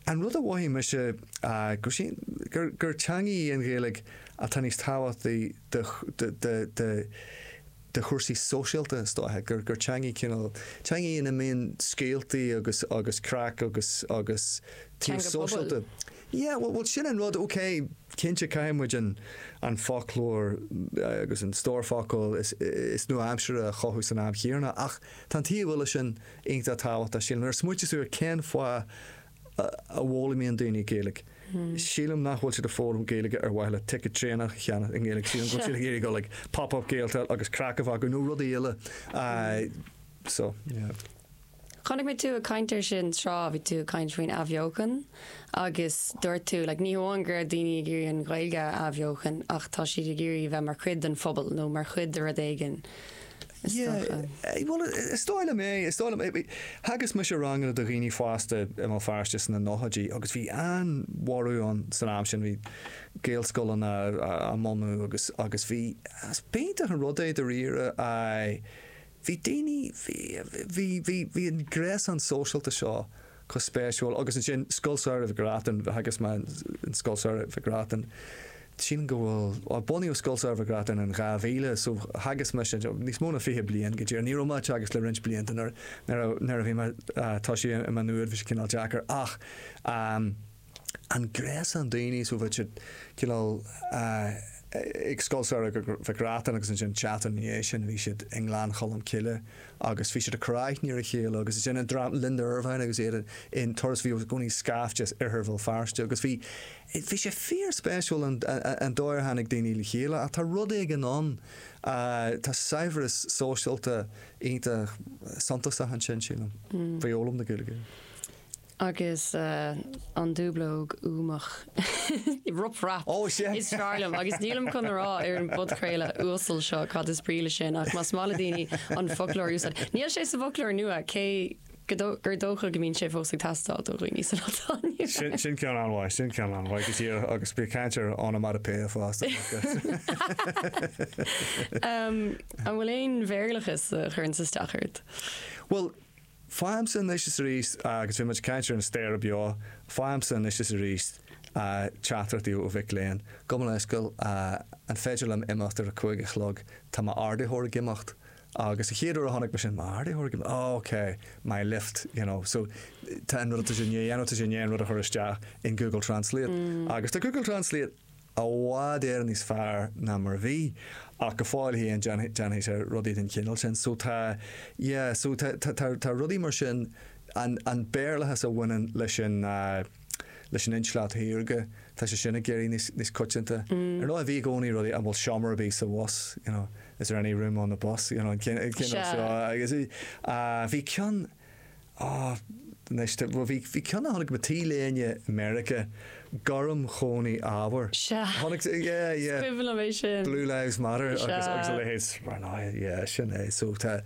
An rud a mhothaigh mise gur teanga í an Ghaeilge atá níos tábhachtaí do chúrsaí sóisialta is dóiche, gur teanga í cineál, teanga í ina mbíonn scéaltaí agus craic agus taobh sóisialta. Teanga pobail. Yeah, bhuel sin an rud, ok, cinnte caithfidh muid an foclóir agus an stór focal is nua-aimseartha a chothú san am chéanna ach tá an taobh eile sin iontach tábhachtach, sílim. Nuair a smaoitíos tú air cén fáth a bhfoghlaimíonn daoine Gaeilge, sílim nach bhfuil siad ag foghlaim Gaeilge ar mhaithe le ticket traenach a cheannach i nGaeilge, sílim go bhfuil siad ag iarraidh dul ag Pop Up Gaeltacht agus craic a bheith acu nó rudaí eile. So, yeah. Chonaic mé tú ag caint ar sin tráth, bhí tú ag caint faoin athbheochan agus dúirt tú like, ní hamháin go raibh daoine ag iarraidh an Ghaeilge a athbheochan ach tá siad ag iarraidh a bheith mar chuid den phobal nó mar chuid de rud éigin. is dócha. Yeah, bhuel is dóigh liom é, is dóigh liom é. Theagasc mise ranganna do dhaoine fásta i mBéal Feirste sna nóchaidí agus bhí an-bhorradh ann san am sin, bhí gaelscoileanna á mbunú agus, agus bhí, is b'iontach an rud é dáiríre, aye, bhí daoine, bhí, bhí, bhí, bhí an gréasán sóisialta seo Go han-spéisiúil. Agus ansin Scoil Samhraidh Mhic Reachtain, theagasc mé in Scoil Samhraidh Mhic Reachtain, tchím go bhfuil, bhuel bunaíodh Scoil Samhraidh Mhic Reachtain in 2000, so theagasc mise níos mó ná fiche bliain go díreach. Ní raibh mé ag teagasc le roinnt blianta nuair a bhí mé, tá sé i mo nuad, bhí sé cineál deacair ach, an gréasán daoine seo bhí siad cineál ag Scoil Samhraidh Mhic Reachtain agus ansin seachtain ina dhiaidh sin bhí siad i nGleann Cholm Cille agus bhí siad ag cur aithne ar a chéile agus ansin an dream Linda Ervine agus iad in Turas bhí i gcónaí scaifte as oirthear Bhéal Feirste agus bhí bhí sé fíor spéisiúil an an dóigh ar tháinig daoine le chéile ach tá rud éigin ann tá saibhreas sóisialta iontach suntasach ansin sílim faoi fhoghlaim na Gaeilge. Agus an dúblóg uamach rop rap is fearr liom agus nílim chun a rá ar an bpodchraoladh uasal seo cad is brí le sin ach más maith le daoine an foclóir a úsáid, níl sé sa bhfoclóir nua cé gur dócha go mbíonn sé fós ag teastáil do dhaoine san am céanna. Sin ceann an-mhaith, sin ceann an-mhaith go deo agus bí ag caint ar onomatopoeia fosta. An bhfuil aon bhéarlachas a chuireann isteach ort? Bhuel, Faighimse anois is arís, agus bhí muid ag caint ar an staighre beo, faighimse anois is arís teachtaireachtaí ó mhic léinn. Gabh mo leithscéal an féidir liom imeacht ar a cúig a chlog? Tá m'ardaítheoir ag imeacht. Agus an chéad uair a chonaic mé sin, m'ardaítheoir ag imeacht? Oh ok, my lift, you know. So tá an rud atá siad i ndiaidh a dhéanamh, tá siad i ndiaidh an rud a chur isteach in Google Translate. Agus tá Google Translate. I bhfad Éireann níos fearr ná mar a bhí ach go fóill féin déanfaidh, déanfaidh sé rudaí den chineál sin. So tá, yeah, so tá, tá, tá, tá rudaí mar sin, an, an Béarlachas a bhaineann leis an, leis an intleacht shaorga, tá sé sin ag éirí níos, níos coitianta. Ar ndóigh bhí i gcónaí rudaí, an bhfuil seomra ar bith sa bhus, you know, is there any room on the bus, you know, an, cén, cén aois, agus, bhí ceann, Ah, anois tá, bhuel bhí, bhí ceann a chonaic mé T-léine i Meiriceá, gorm chónaí ábhair. Sea. Chonaic, yeah, yeah. Is cuimhin liom é sin. Blue Lives Matter agus, agus a Sea. leithéid. Mar ná, yeah, sin é. So tá,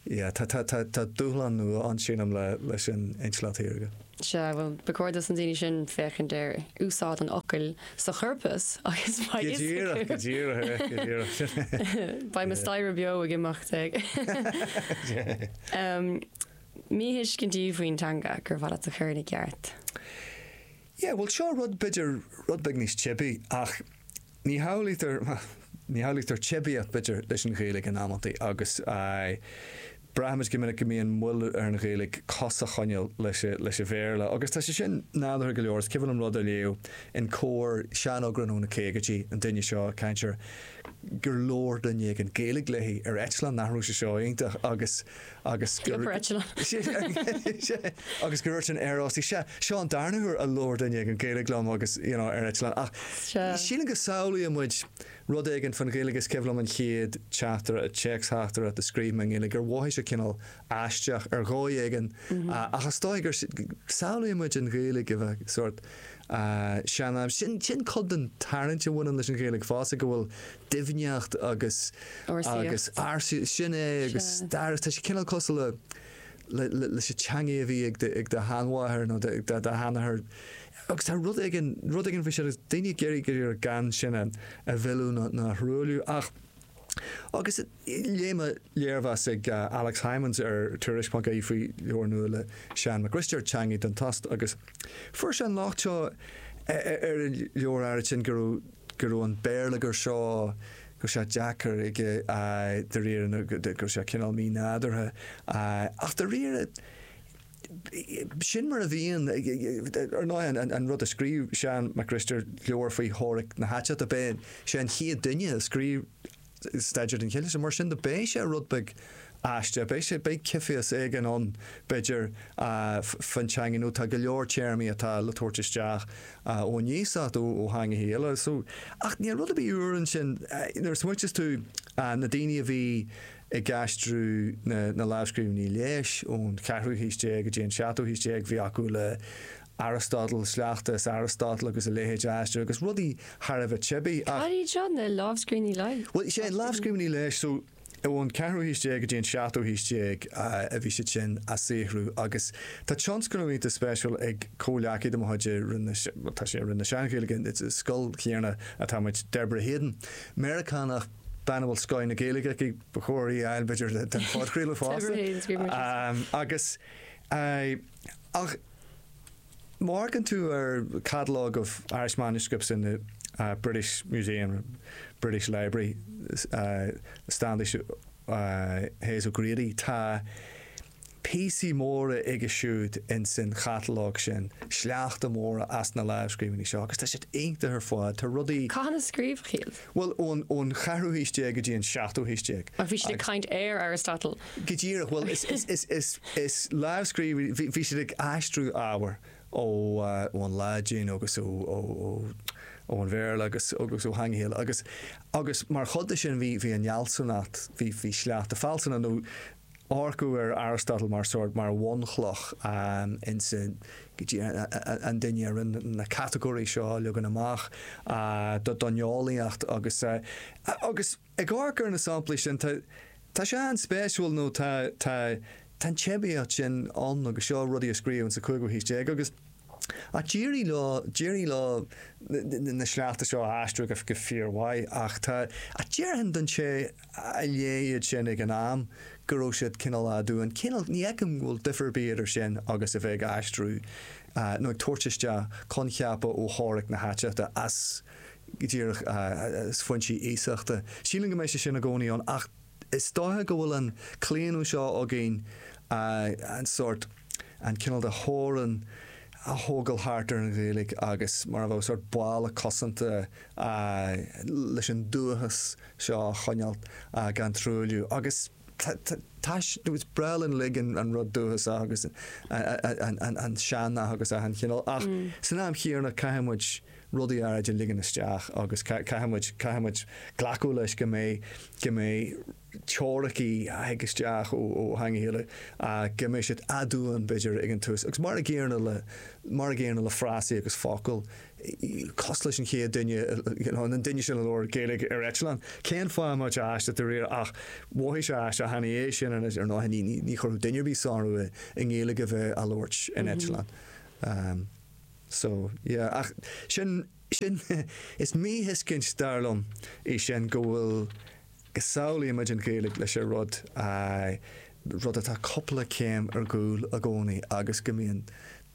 yeah, tá, tá, tá, tá dúshlán nua ann, sílim, le, leis an intleacht shaorga. Sea, bhuel, ba chóir dos na daoine sin féachaint ar úsáid an fhocail sa chorpas agus beidh a fhios acu. Go díreach, go díreach, go díreach sin é. Beidh mo staighre beo ag imeacht. Aon mhíthuiscintí faoin teanga gur mhaith leat a chur ina gceart. Yeah, bhuel, seo rud b'fhéidir rud beag níos teibí ach Ní shamhlaítear, bhuel, ní shamhlaítear teibíocht, b'fhéidir, leis an Ghaeilge in amanntaí agus braithimid go minic go mbíonn moill ar an Ghaeilge cos a choinneáil leis an Bhéarla agus tá sé sin nádúrtha go leor. Is cuimhin liom rud a léamh in Comhar sean-eagrán óna caogaidí an duine seo, ag caint air gur labhair duine éigin Gaeilge léi ar eitleán nach raibh sé seo iontach agus agus gur. Sciobar eitleán. agus gur irt an aerásaí. Sea, seo an darna huair a labhair duine ag an Ghaeilge liom agus, you know, ar eitleán. Ach sílim go samhlaíonn muid rud éigin faoin Ghaeilge is cuimhin liom an chéad teachtaireacht, téacsteachtaireacht a scríobh mé i nGaeilge gur mhothaigh sé cineál aisteach ar dhóigh éigin ach is dóigh gur samhlaíonn muid an Ghaeilge a bheith sórt sean-aimseartha. Sin cuid den tarraingt a bhaineann leis an Ghaeilge fosta go bhfuil doimhneacht agus agus ársaíocht. Sin é agus stair. Tá sé cineál cosúil le le leis an teanga a bhí ag ag do sheanmháthair nó ag do sheanathair agus tá rud éigin rud éigin faoi sin agus daoine ag iarraidh go leor gan sin a a mhilleadh nó nó a thruailliú ach agus léigh mé léirmheas ag Alex Hijmans ar Tuairisc.ie faoi leabhar nua le Seán Mac Risteaird, Teangaidh don Tost agus fuair sé an locht seo ar an leabhar áirid sin go raibh go raibh an béarlagair seo, go raibh sé deacair aige de réir, go raibh sé cineál mínádúrtha ach dáiríre sin mar a bhíonn, ar ndóigh an rud a scríobh Seán Mac Risteaird leabhar faoi theoiric na haiteachta, ab é an chéad duine a scríobh staidéar den chineál sin. Mar sin de, beidh sé rud beag aisteach, beidh sé, beidh cinnúlacht éigin ann b'fheidir faoin teangain nó tá go leor téarmaí atá le tabhairt isteach nó a bheas agat ó theangacha eile. So, ach níl rud ar bith úr ansin nuair a smaoitíos tú na daoine a bhí ag aistriú na lámhscríbhinní leighis ón cheathrú haois déag go dtí an seachtú haois déag, bhí acu le, Aristotle, sleachta as Aristotle agus a leithéid a aistriú agus rudaí thar a bheith teibí ach. Cad iad seo, na lámhscríbhinní leighis? Bhuel, is é na lámhscríbhinní leighis, so ón 4ú haois déag go dtí an 7ú haois déag a bhí siad sin á saothrú agus tá tionscnamh iontach spéisiúil ag comhleacaí de mo chuid i Roinn na, bhuel tá sí i Roinn na Sean-Ghaeilge, i Scoil an Léinn Cheiltigh atá muid, Deborah Hayden, Meiriceánach, bean a bhfuil scoth na Gaeilge aici, ba chóir í a fháil b'fhéidir don phodchraoladh fosta, agus, ach. Amharcann tú ar Catalogue of Irish Manuscripts in the British Museum, British Library, Standish Hayes O'Grady, tá píosaí móra aige siúd ins an chatalóg sin, sleachta móra as na lámhscríbhinní seo agus tá siad iontach ar fad. Tá rudaí. Cathain a scríobhadh iad? Bhuel, ón, ón cheathrú haois déag go dtí an seachtú haois déag. Ach bhí siad ag Agus. caint ar Aristotle. Go díreach, bhuel is, is, is, is, is lámhscríbhinn, bhí, bhí siad ag aistriú ábhair ó, ón Laidin agus ó, ó, ó, ó an Bhéarla agus, agus ó theangacha eile agus, agus mar chuid de sin bhí, bhí an fhealsúnacht, bhí, bhí sleachta fealsúna nó, amharcadh ar Aristotle mar sórt mar bhunchloch insa go dtí an duine a rinne na catagóirí seo a leagan amach don eolaíocht agus agus ag amharc ar na samplaí sin tá tá sé an-spéisiúil nó tá tá tá an teibíocht sin ann agus seo rudaí a scríobhadh insa chúigiú haois déag agus Ach d'éirigh leo, d'éirigh leo na sleachta seo a aistriú go fíormhaith ach tá, ach déarfainn don té a léigh iad sin ag an am go raibh siad cineál aduain, cineál, ní fheicim go bhfuil difear ar bith eadar sin agus a bheith ag aistriú nó ag tabhairt isteach coincheapa ó theoiric na haiteachta as, go díreach, as foinsí iasachta. Sílim go mbeidh sé sin i gcónaí ann ach. Is dóiche go bhfuil an claonadh seo againn sórt, an cineál de theorainn a thógail thart ar an Ghaeilge agus mar a bheadh sórt balla cosanta leis an dúchas seo a choinneáil gan truailliú agus tá, is breá linn uilig an rud dúchasach agus an sean-nath agus achan chineál ach san am chéanna caithfidh muid rudaí áirid a ligean isteach agus caithfidh muid glacadh leis go mbeidh teoiricí a thig isteach ó theanga eile go mbeidh siad aduain b'fhéidir ag an tús agus mar a gcéanna le frásaí agus focail cosúil leis an chéad duine you know an duine a labhair Gaeilge ar eitleán cén fáth má tá aisteach de réir ach mhothaigh sé aisteach cheana é sin anois ar ndóigh ní chuirfeadh duine ar bith sonrú i nGaeilge a bheith á labhairt in eitleán. So, yeah, ach sin, sin, is míthuiscint, dar liom, é sin, go bhfuil, go samhlaímid an Ghaeilge leis an rud, aye, rud atá cupla céim ar gcúl i gcónaí agus go mbíonn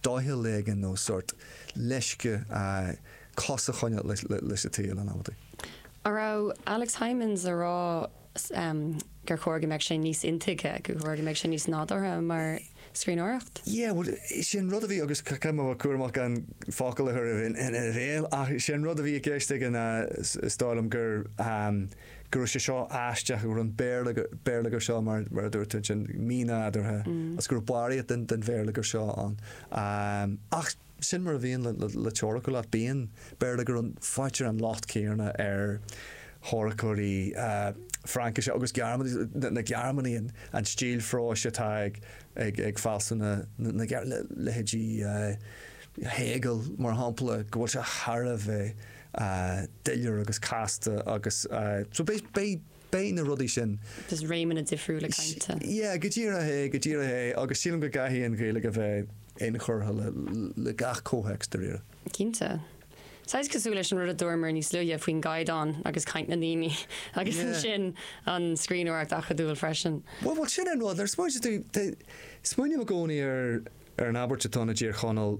doicheall éigin nó sórt leisce, aye, cos a choinneáil leis an tsaol, an amhlaidh go raibh Alex Hijmans ag rá. gur chóir go mbeadh sé níos intuigthe, gur chóir go mbeadh sé níos nádúrtha mar scríbhneoireacht? Yeah, bhuel, sin rud a bhí agus caithfidh mé a bheith cúramach gan focail a chur ina bhéal ach sin rud a bhí i gceist aige ná, is dóigh liom, gur, go raibh sé seo aisteach, go raibh an béarlagar seo, mar a dúirt tú ansin, mínádúrtha agus go raibh barraíocht den bhéarlagar seo ann ach, Sin mar a bhíonn le teoiric liteartha, bíonn béarlagar ann, faightear an locht céanna ar theoiriceoirí Fraincise agus Gearmáinise, na Gearmánaigh, an stíl phróis atá ag fealsúna na Gearmáine, leithéidí Hegel mar shampla, go bhfuil sé thar a bheith doiléir agus casta agus so beidh, Beidh na rudaí sin. just réimeanna difriúla cainte. Yeah, go díreach é, go díreach é agus sílim go gcaithfidh an Ghaeilge a bheith inchurtha le gach comhthéacs, dáiríre. Cinnte. Saghas cosúil leis an rud a dúramar níos luaithe faoin gcaighdeán agus caint na ndaoine agus ansin an scríbhneoireacht acadúil freisin. Bhuel, bhuel, sin é an rud, nuair a smaointeas tú, smaoiním i gcónaí ar an abairt atá ann i dTír Chonaill,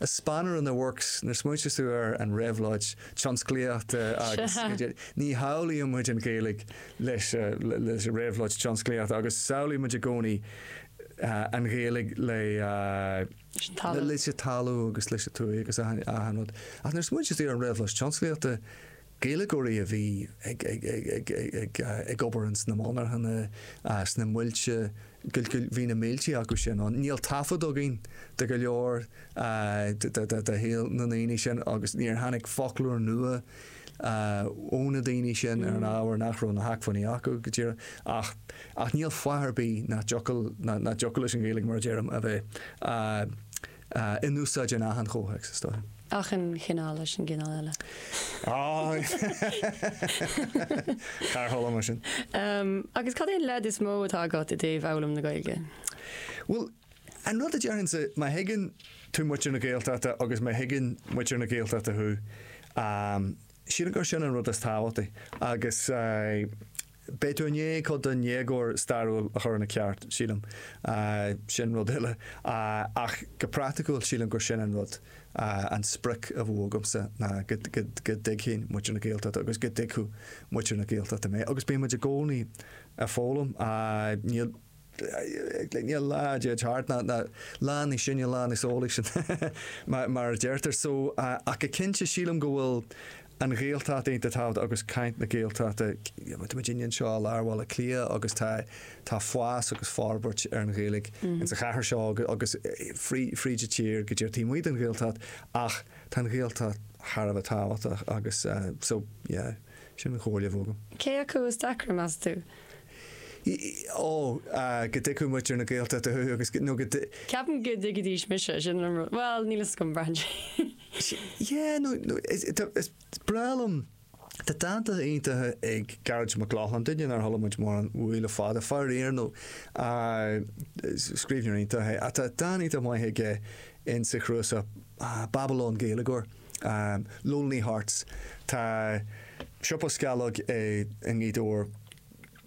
A spanner in the works, nuair smaointeas tú ar an réabhlóid tionsclaíochta agus ní shamhlaíonn muid an Ghaeilge leis an réabhlóid tionsclaíochta agus samhlaíonn muid i gcónaí an Ghaeilge le leis an talamh agus leis an tuaith agus achan rud ach nuair smaointeas tú ar an réabhlóid tionsclaíochta Gaeilgeoirí a bhí ag obair ins na monarchana, sna muilte, bhí na mílte acu sin ann. Níl taifead againn de go leor de shaol na ndaoine sin agus níor tháinig foclóir nua ó na daoine sin ar an ábhar nach raibh na hacmhainní acu go díreach. Ach níl fáth ar bith nach dtiocfadh leis an Ghaeilge, mar a deirim, a bheith in úsáid in achan chomhthéacs, is dóigh. Achan chineál leis an gcineál eile. Cár tharla mar sin? Agus cad é an leid is mó atá agat i dtaobh fhoghlaim na Gaeilge? Bhuel, an rud a déarfainnse, má thuigeann tú muintir na Gaeltachta agus má thuigeann muintir na Gaeltachta thú, sílim gur sin an rud is tábhachtaí agus. Beidh tú i ndiaidh cuid den éagóir stairiúil a chur ina ceart, sílim. Sin rud eile. Ach go praiticiúil, sílim gur sin an rud, an sprioc a bheadh agamsa ná go dtuigfinn muintir na Gaeltachta agus go dtuigfeadh muintir na Gaeltachta mé. Agus bíonn muid i gcónaí ag foghlaim. Níl. Glinne lá dead hard ná lá níos sine, lá níos eolaí sin mar a deirtear. So ach go cinnte sílim go bhfuil an Ghaeltacht iontach tábhachtach agus caint na Gaeltachta, táimid anseo i lár Bhaile Átha Cliath agus tá tá fás agus forbairt ar an Ghaeilge in sa chathair seo agus fríd an tír go dtí taobh amuigh den Ghaeltacht ach tá an Ghaeltacht thar a bheith tábhachtach agus so yeah sin an chomhairle a bheadh agam. Cé acu is deacra, meas tú? ii, Ó, go dtuigfeadh muintir na Gaeltachta thú agus, nó go. Ceapaim go dtuigfidís mise, sin an rud. Bhuel, níl 'fhios agam, braitheann sé. Yeah, nó, nó, is, is breá liom, tá dánta iontacha ag Gearóid Mac Lochlainn, duine nár chuala muid mórán uaidh le fada, faraor, nó scríbhneoir iontach é, ach tá dán iontach maith aige in sa chnuasach, Babylon Gaeilgeoir. Lonely Hearts Tá siopa sceallóg i nGaoth Dobhair,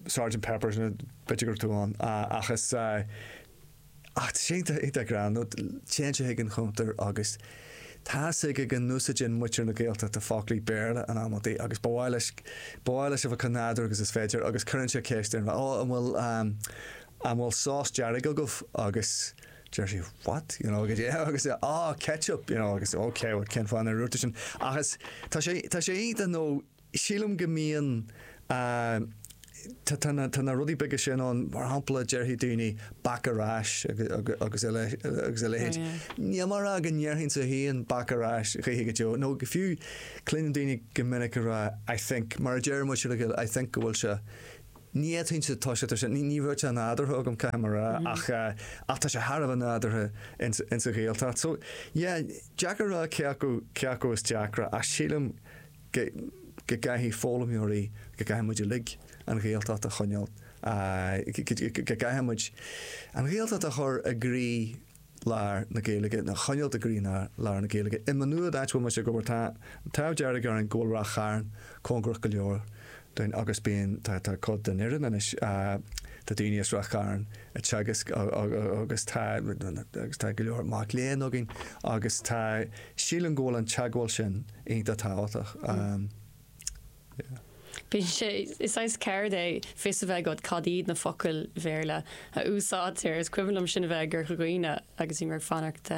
Sergeant Pepper's b'fhéidir go raibh tú ann ach is ach sé ag rá nó téann sé chuig an chuntar agus tá a fhios aige go n-úsáideann muintir na Gaeltachta foclaí Béarla in amantaí agus ba mhaith leis ba mhaith leis a bheith chomh nádúr agus is féidir agus cuireann sé ceist uirthi, 'Ó an bhfuil an bhfuil sós dearg agaibh? agus. Deir sí what? you know, goidé agus é ah ketchup, you know, agus ok bhuel cén fáth nár dhúirt tú sin? Ach is tá sé tá sé iontach nó sílim go mbíonn eh tá tá na tá na rudaí beaga sin ann mar shampla déarfaidh daoine back ar ais agus agus a agus a leithéid níl mé ag rá go ndéarfainnse féin back ar ais choíche go deo nó fiú cluineann daoine go minic ag rá I think mar a deir muid siúd ag gabháil I think go bhfuil sé Ní fhéadfainnse, tá sé, tá sé, ní raibh sé nádúrtha agam, caithfidh mé a rá, ach ach tá sé thar a bheith nádúrtha in sa Ghaeltacht. So, yeah, deacair a rá cé acu, cé acu is deacra ach sílim go go gcaithfidh foghlaimeoirí, go gcaithfidh muid uilig an Ghaeltacht a choinneáil, go gcaithfidh muid an Ghaeltacht a chur i gcroí, lár na Gaeilge, nó a choinneáil i gcroílár na Gaeilge. I Má Nuad, áit a bhfuil mise ag obair, tá an t-ádh dearg orainn go bhfuil Ráth Chairn cóngarach go leor dúinn agus bíonn, tá, tá cuid den fhoireann anois, tá daoine as Ráth Chairn ag teagasc agus tá, agus tá go leor mac léinn againn agus tá, sílim go bhfuil an teagmháil sin iontach tábhachtach. Bíonn sé, is saghas ceird é fios a bheith agat cad iad na focail Bhéarla a úsáidtear. Is cuimhin liom sinn a bheith i gCorca Dhuibhne agus bhíomar ag fanacht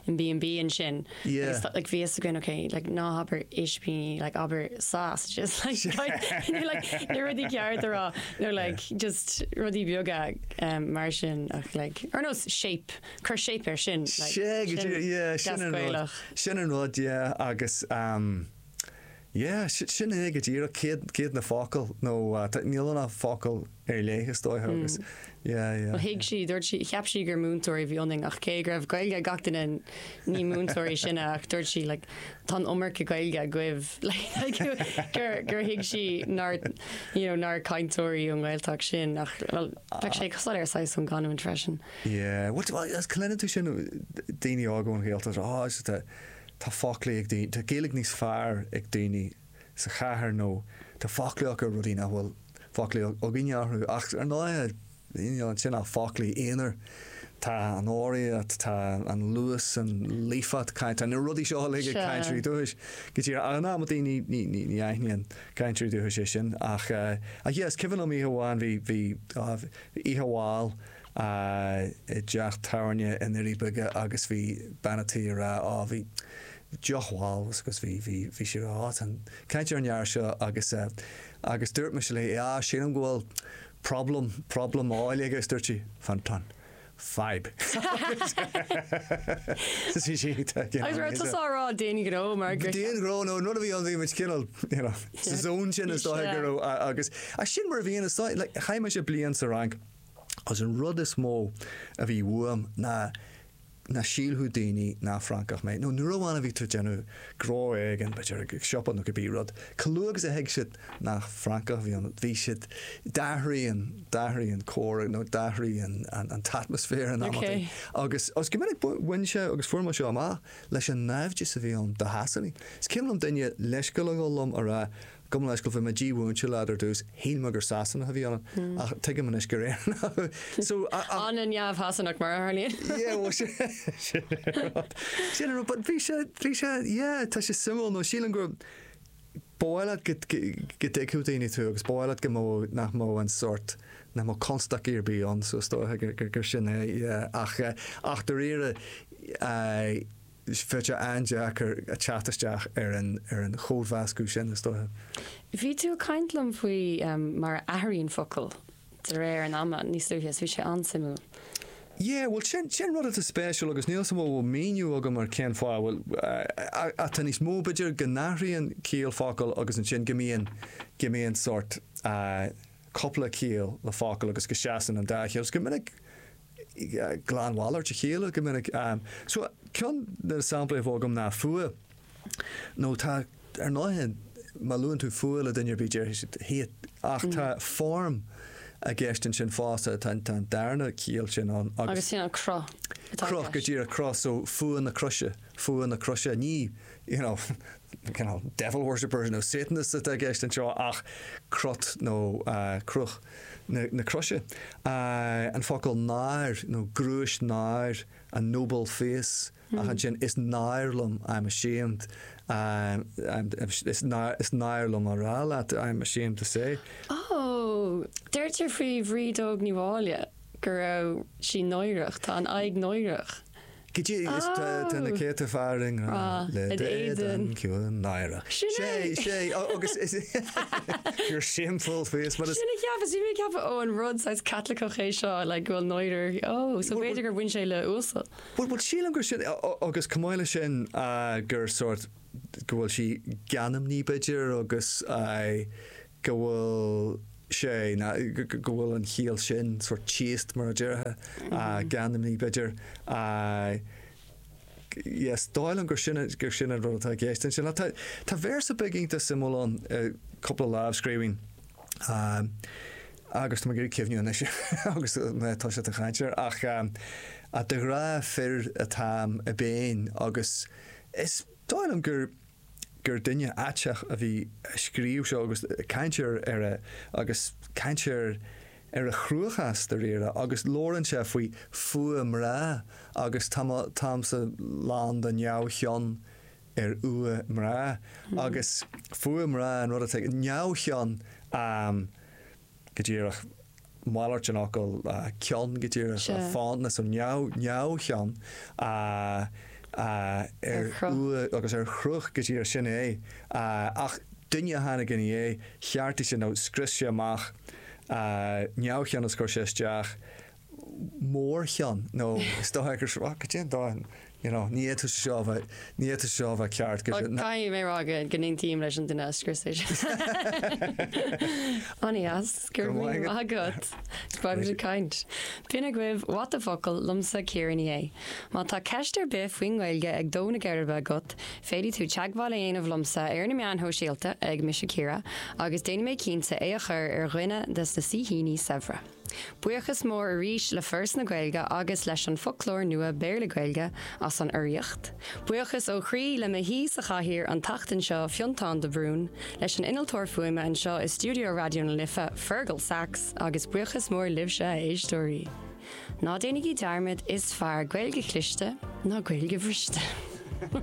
in B&B ansin agus Yeah. like bhí a fhios againn ok like ná habair ispíní like abair sausages like you know like na rudaí ceart a rá nó like just rudaí beaga em mar sin ach like ar nós shape, cuir shape ar sin like Sé go dtí, sin yeah, sin deas an rud. Gaelach. Sin an rud, yeah, agus ehm. Yeah, sin é go díreach, cé hiad, cé hiad na focail, nó níl ann ach focail ar léith is dóiche agus yeah, yeah. Well thuig sí, dúirt sí, cheap sí gur múinteoirí a bhí ionainn ach cé go raibh Gaeilge ag gach duine ní múinteoirí sinne ach dúirt sí like tá an iomarca Gaeilge agaibh like gur, gur thuig sí nár, you know, nár cainteoirí ón nGaeltacht sinn ach well bheadh sé soiléir saghas ón gcanúint freisin. Yeah, well, well is cluineann tú sin daoine óga ón Ghaeltacht, oh, Tá foclaí ag daoine, tá Gaeilge níos fearr ag daoine sa chathair nó tá foclaí acu ar rudaí nach bhfuil foclaí againne orthu ach ar ndóigh, níl ansin ach foclaí aonair, tá an rithim, tá an luas, an líofacht cainte, tá na rudaí seo uilig ag cainteoirí dúchais. Go dtí ag an am a daoine, ní, ní, ní aithníonn cainteoirí dúchais é sin ach, ach yeah, is cuimhin liom oíche amháin, bhí, bhí, oh, bhí oíche mhall, i dteach tábhairne i nDoirí Beaga agus bhí bean an tí ag rá á bhí deoch mhall agus bhí bhí bhí siad ag caint ar an fhear seo agus agus dúirt mise léi á sílim go bhfuil problem problem óil aige agus dúirt sí fan tá an fadhb agus bhí sí tá gin Agus raibh tusa á rá d'aon ghnó mar gur d'aon ghnó nó an rud a bhí ann bhí muid cineál you know sa zone sin is dóigh go raibh agus agus sin mar a bhíonn is dóigh like chaith mise bliain sa Fhrainc Agus an rud is mó a bhí uaim ná nach sílfeadh daoine nach Francach mé. Nó nuair amháin a bhí tú ag déanamh gnó éigin, b'fhéidir ag siopa nó cibé rud, chomh luath agus a thuig siad nach Francach a bhí ionat, bhí siad, d'athraigh, d'athraigh an comhrá nó d'athraigh an t-atmaisféar in amannaí. Agus go minic bhain sé, agus fuair mé seo amach, leis an naimhdeas a bhí ann do Shasanaigh. Is cuimhin liom duine leithscéal a ghabháil liom ag rá, Gabh mo leithscéal, bhí mé dímhúinte leat ar dtús, shíl mé gur Sasanach a bhí ionat, ach tuigim anois gur Éireannach thú. So, ach. Ana neamh-Shasanach mar a tharlaíonn. Yeah, bhuel sin, sin é rud. Sin é rud, but bhí sé, bhí sé, yeah, tá sé suimiúil, nó sílim gur, ba mhaith leat go, go, go dtuigfeadh daoine tú agus ba mhaith leat go mbeadh, nach mbeadh an sórt, nach mbeadh constaicí ar bith ann, so is dóiche gur, gur, gur sin é, yeah, ach eh, ach dáiríre, eh, Bheadh sé an-deacair teacht isteach ar an chódmheascadh sin, is dóiche. Bhí tú ag caint liom faoi mar a athraíonn focal de réir an ama níos luaithe is bhí sé an-suimiúil. Yeah, bhuel sin sin rud atá spéisiúil agus níl a fhios agam an mbeadh míniú agam ar cén fáth, bhuel ach tá níos mó b'fhéidir go n-athraíonn ciall focal agus ansin go mbíonn go mbíonn sórt cúpla ciall le focal agus go seasann an dá chiall agus go minic glanmhalairt a chéile go minic. Ceann de na samplaí a bheadh agam ná fuath nó tá. Ar ndóighe, má luann tú fuath le duine ar bith déarfaidh siad hate ach tá form i gceist ansin fosta, tá an darna chiall sin ann agus. Agus sin an cruth atá i gceist. Cruth, go díreach, cruth. So fuath na croise, fuath na croise. Ní you know cineál devil worshippers nó satanists atá i gceist anseo ach crot nó cruth. na croise, an focal náir nó gnúis náir a noble face ach ansin is náir liom I am ashamed is náir liom a rá leat I am ashamed to say. Oh, deirtear faoi Bhríd Óg Ní Mháille go raibh sí náireach, tá an aghaidh náireach. Is tá na céadta fear i ngrá le d'éadan ciúin náireach. Sin é! Sé, ó agus is your shameful face but it's Sin a cheapas, bhí mé ag ceapadh ó an rud saghas Caitliceach é seo like go bhfuil náire ó so b'fhéidir gur bhain sé le uasal. Bhuel bhuel sílim gur sin ó agus chomh maith leis sin gur sórt go bhfuil sí geanmnaí b'fhéidir agus go bhfuil sé ná go bhfuil an chiall sin sórt thíos mar a déarfá, a gheanmnaí b'fhéidir. Yes, is dóigh liom gur sin gur sin an rud atá i gceist ansin. Ach tá véarsa beag iontach suimiúil ann i gcúpla lámhscríbhinn, agus tá mé ag iarraidh cuimhneamh anois agus mé toisithe a chaint air, ach de ghrá fir atáim i bpéin agus is dóigh liom gur. gur duine aisteach a bhí ag scríobh seo agus caint ar ar a ag caint ar ar a chruachás de réir a agus labhrann sé faoi fuacht mná agus tá mo táimse lán de neamhchion ar fhuacht mná agus fuacht mná an rud atá neamhchion a go díreach, malairt den fhocal cion, go díreach, Sea. fána, so neamh, neamhchion Ar ar chruth. fhuacht agus ar chruth, go díreach, sin é. Ach duine a tháinig ina dhiaidh, cheartaigh sé nó scrios sé amach neamhchion is chuir sé isteach. mórchion nó is dóiche gur seo, gur shíl sé go, go dtéann, you know, ní fhéadfadh sé seo a bheith, ní fhéadfadh sé seo a bheith ceart go dtí na. Caithfidh mé a rá go go n-aontaím leis an duine a scrios é seo. An-deas, go raibh míle maith agat. Go raibh maith agat. Go raibh tú caint. B'in agaibh What the Focal liomsa Ciara Ní É. Má tá ceist ar bith faoin nGaeilge ag dó na geirbe agat, féadfaidh tú teagmháil a dhéanamh liomsa ar na meáin shóisialta ag Mise Ciara agus déanfaidh mé cinnte é a chur ar dhuine de na saoithíní saibhre. Buíochas mór arís le Foras na Gaeilge agus leis an Foclóir Nua Béarla-Gaeilge as an urraíocht. Buíochas ó chroí le mo shaoi sa chathaoir an tseachtain seo, Fionntán de Brún, leis an innealtóir fuaime anseo i stiúideo Raidió na Life, Fergal Sachs, agus buíochas mór libhse, a éisteoirí. Ná déanaigí dearmad, is fearr Gaeilge chliste ná Gaeilge bhriste!